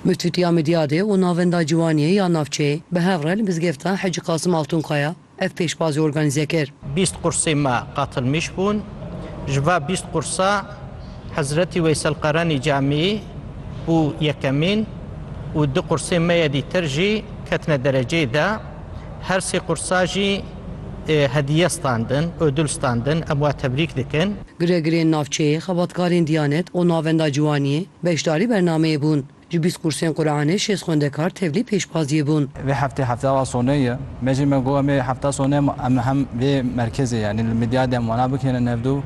Mûtûtîya Midyadê û Navenda Ciwaniyê ya Navçeyê bi hev re li Mizgefta Hecî Qasim Altunkaya ev pêşbazî organîze kir. Bîst qursê me qatilmîş bûn. Ji va bîst qursa Hezretî Weysel Qarenî Camiyî bû yekemîn û du qursê me yê dîtir jî ketine dereceyê de. Her sê qursa jî hediye standin, ödül standin. Em wan tebrîk dikin. Giregirên navçeyê, xebatkarên Diyanet û Navenda Ciwaniyê beşdarî bernameyê bûn. Ji bîst kursên Quranê şêst xwendekar tevlî pêşbaziyê bûn. Vê heftê hefta wa sonê ye. Me jî me got em ê hefta sonê em hem vê merkezê yanî li Midyadê em wana bikênin hevdu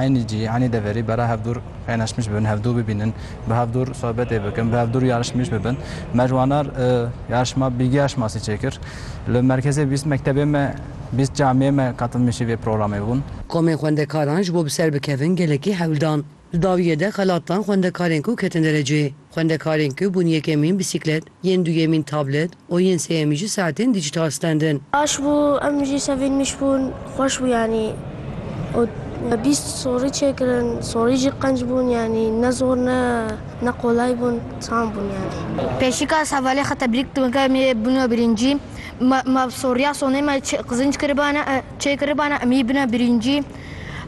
eynî cî, eynî deverî bera hevdûr qeynaşmiş bibin, hevdû bibînin, bi hevdûr sobetê bikin, bi hevdûr yarişmîş bibin. Me ji wana yarişma bîrgeha şinasî çêkir. Li merkezê bîst mektebê me. Bîst camiyê me qatilmişî vê programê bûn. Komên xwendekaran ji bo bi ser bikevin gelekî hewl dan. Di dawiyê de xelat dan xwendekarên ku ketin derecê. Xwendekarên ku bûn yekemîn bîsîklet, yên duyemîn tablet û yên sêyemîn jî saetên dîjîtal stendin. Baş bû em jî sevînmiş bûn. Xweş bû yanî û me bîst sorî çêkirin. Sorî jî qenc bûn yanî ne zor ne ne qolay bûn. Tam bûn yanî. Pêşîka Savalê xwe tebrîk dikim ke em ê bûn we birîncî. Ma ma Sorya sonê ma çê qızınc kiribana çê kiribana em yî bina birinci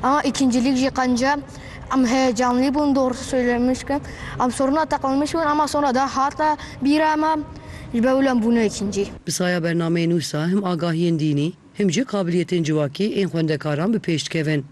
ama ikincilik jî qence em heyecanlî bûn doğrusu söylemiş ke em soruna teqilmiş bûn ama sonra da hata bîra me ji ber wî em bûne ikincî. Bi saya bernameyê nû sa him agahiyên dînî him jî qabiliyetên civakî ên xwendekaran bi pêş dikevin.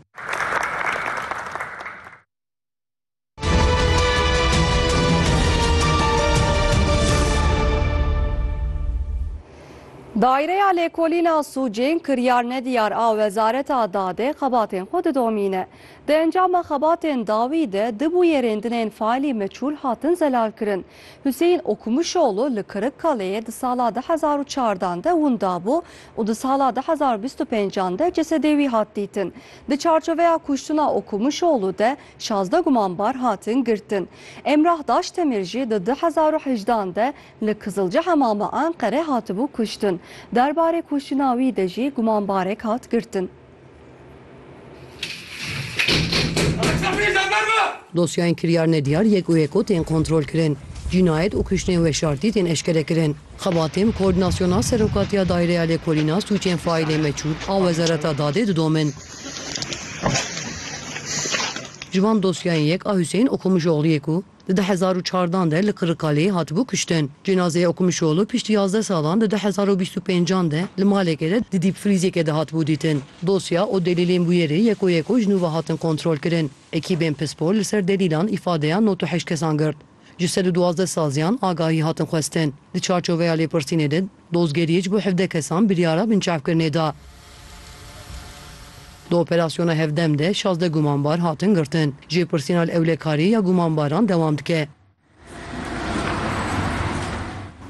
Daireya Lêkolîna Sûcên kiryarnediyar a Wezareta Dadê xebatên xwe didomîne. Di encama xebatên dawî de du bûyerêndinên faîlî meçûl hatin zelalkirin. Huseyîn Okumuşoglu li Kirikkaleyê di sala du hezar û çardan de winda bû û di sala du hezar û bîst û pêncan de cesedê wî hat dîtin. Di çarçoveya kuştina Okumuşoglu de Şazdeh gumanbar hatin girtin. Emrah Daştemir jî di du hezar û hejdan de li Kizilci Hemama Enqere hatibû kuştin. Derbarê kuştina wî de jî gumanbarek hat girtin. Dosyayên kiryar nediyar yek û yeko tên kontrolkirin. Cînayet û kuştên weşartî tên eşkerekirin. Xebatên Koordinasyona Serokatiya Daireya Lêkolîna Sûcên Faîlê Meçûl a Wezareta Dadê didomin. Ji van dosyayên yek a Huseyîn Okumuşoglû ye ku di du hezar û çardeh an de li Qirikkaleyê hatibû kuştin. Cenazeya Okumuşoglû piştî yazdeh salan di du hezar û bîst û pênc an de li malekê de di dîpfrîzekê de hatibû dîtin. Dosya û delîlên bûyerê yeko yeko ji nû ve hatin kontrolkirin. Ekîbên pispor li ser delîlan îfadeya nod û heşt kesan girt. Ji sed û duwazdeh saziyan agahî hatin xwestin. Di çarçoveya lêpirsînê de, Dozgeriyê ji bo hevdeh kesan biryara binçavkirinê da. Di operasyona hevdem de şazdeh gumanbar hatin girtin. Jêpirsîna li ewlekariyê ya gumanbaran dewam dike.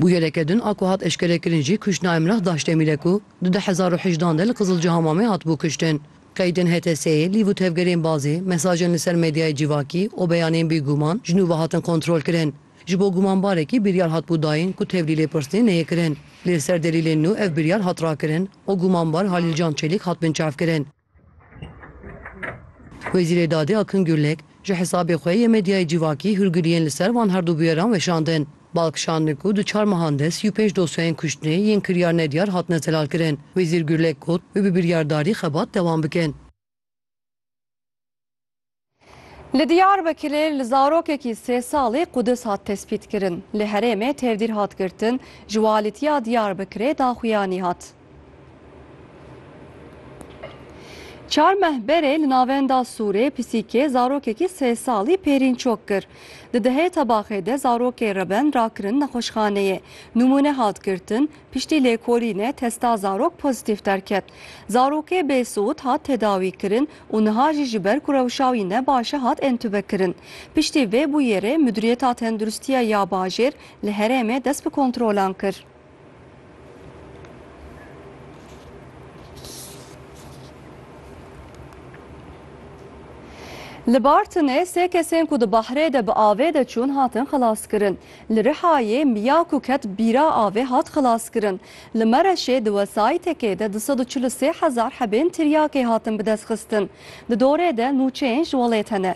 Bûyereke din a ku hat eşkerekirin jî kuştina Emrah Daşdemîr e ku di du hezar û hejdan de li Qizilcihamamê hatibû kuştin. Qeydên HTS'ê, lîv û tevgerên bazê, mesajên li ser medyayê civakî û beyanên bêguman ji nû ve hatin kontrolkirin. Ji bo gumanbarekî biryar hatbû dayîn ku tevlî lêpirsînê neyê kirin. Lê li ser delîlên nû ev biryar hat rakirin û gumanbar Halîl Can Çelîk hat binçavkirin. Wezîrê Dadê Akın Gürlek, ji hesabê xwe yê medyayê cîvakî hûrgiliyên li ser van her du bûyeran weşandin. Bal kişandin ku di çar mehan de sî û pênc dosyayên kuştinê yên kiryar nediyar hatine zelalkirin. Wezîr Gürlek got, wê bi biryardarî xebat dewam bikin. Li Diyarbekirê li zarokekî sê salî qudis hat tespîtkirin. Li herêmê tevdîr hat girtin, ji walîtiya Diyarbekirê daxuyanî hat. Çar meh berê li navenda Sûrê pisîkê zarokekî sê salî pêrîn çok kir. Di dehê tebaxê de zarokê reben rakirin nexweşxaneyê. Nimûne hat girtin, piştî lêkolînê testa zarok pozîtîf derket. Zarokê bêsûd hat tedawîkirin û niha jî ji ber ku rewşa wî ne baş e hat entûbekirin. Piştî vê bûyerê Miduriyeta Tendurustiya ya Bajêr li herêmê dest bi kontrolan kir. Li Bartinê sê kesên ku di bahrê de bi avê de çûn hatin xelaskirin. Li Rihayê miya ku ket bîra avê hat xelaskirin. Li Mereşê di wesayîtekê de du sed û çil û sê hezar hebên tiryakê hatin bidestxistin. Di dorê de nûçeyên ji welêt hene.